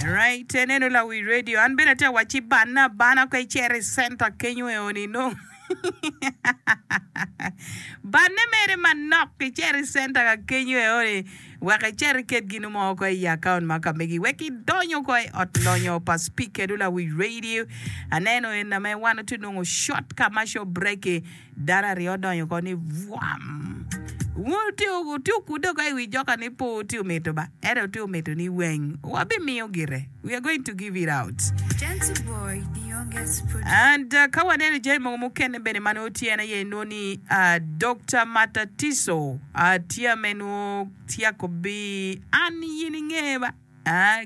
Right en eno lawi radio an bene atye ka wacci banne abana ka icito i center kenyo eo ni nongo banne mere manok icito i center ka kenyo eo ni wek icit iket ginu mo ko i account ma ka megi wek idonyo ko i ot lonyo pa speaker eno lawi radio aneno en ame wan atu nongo short commercial break i Dano aryo odonyo oko ni, Bwam! Wutye okude oko i wi joka ni pe wutye omito ba, ento wutye omito ni weng. Wabimiyo gire. We are going to give it out. And ka waneno jami mogo mukene bene ma nongo tye en aye inongo ni Dokta Matatiso tye ma en nongo tyeko bi an yin inge ba.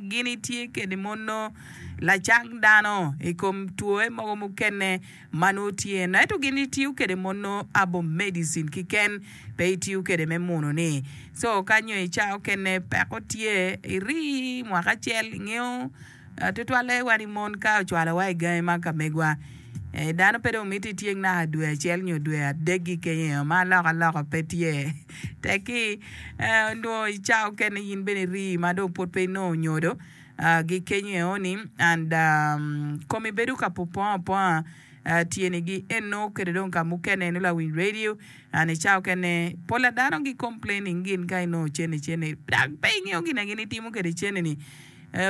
Gin itye kede mono lacang dano i kom twoe mogo mukene ma nongo tye no ento gin itiyo kede mono herbal medicine kiken pe itiyo kede me muno ni so ka nyo ica okene peko tye iri mwaka acel ingeyo tutwalle wa ni mon ka ocwalo wa igangi ma ka megwa dano pe dong mito ityeng naka dwe acel nyo dwe adegi kenyo ma aloko aloko pe tye. Tekki, onongo i cawa mukene in bene irii ma dong pud pe inongo onyodo gi kenyo eoni and komi bedo ka pupongo aponga tyeni gi eno kede dong ka mukene eno lawiny radio and i cawa mukene pol a dano gi complaining gin ka inongo cene cene dok pe ingeyo gina gin itimo kede cene ni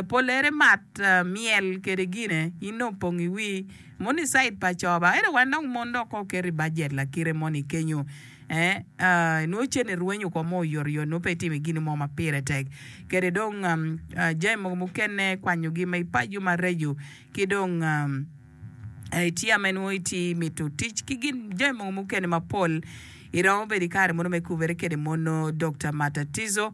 polere mat myel kede gine in dong opong iwii moni side pa coba ento wan dong mon dok ko keto i budget lakite moni kenyo. ee, nongo cente rwenyo kong ma oyotoyot, nongo pe itimo gin mo ma pire tek. Kede dong jami mogo mukene, kwanyogi ma ipaco mareco, ki dong itye ama nongo itye imito tic ki gin jami mogo mukene mapol. Iromo bedo ki kare mono me kubere kwede mono Dokta Matatizo.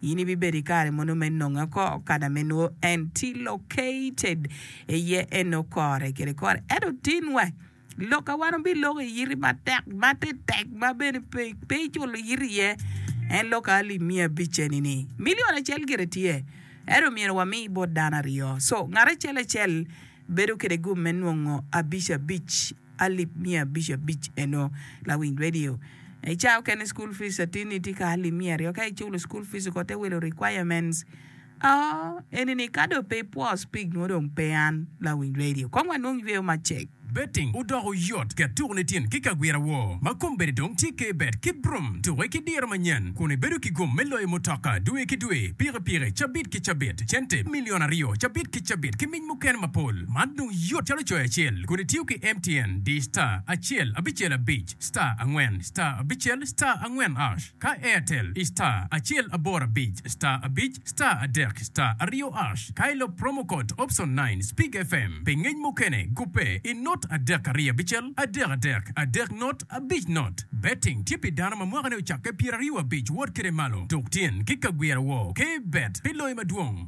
In ibibedo i kare mono me nonge oko kada me nwo en ti located iye eno kore kede kore. Ento tin wa lok a wan obi loko i yiti matek ma te tek ma bene pe pe iculo yiti iye en lok a alip miya abic eni ni million acel gire tye ento myero wami bot dano aryo so ngat acel acel Bedo kede gum me nongo abic abic alip miya abic abic eno lawiny radio I caa okene school fees atini tye ka alip miya aryo ka I culo school fees oko te wilo requirements oo eni ni ka dong pe ipwo speak nwo dong pe an lawiny radio kong wa nwong yweyo ma cek. Betting odoko yot ket tuku ni tin ki kagwira woo ma kom bedi dong tye ke bet ki brum tuke ki diro manyen kun i bedo ki gum me loyo mutoka dwe ki dwe piki piki cabit ki cabit cente million aryo cabit ki cabit ki Pwony mukene mapol man dong yot calo coyo acel kun itiyo ki MTN, di star acel abicel abic star angwen star abicel star angwen hash, ka Airtel i star acel aboro abic star abic star adek star aryo hash, ka ilok promo code option nine Speak FM pi ngec mukene gubbe i not adek ariyo abicel adek adek adek not abic not. Betting tye pi dano ma mwakane ocakke pyeraryo abic wot kede malo dok tyen ki kagwira woo. K-bet pi loyo madwong.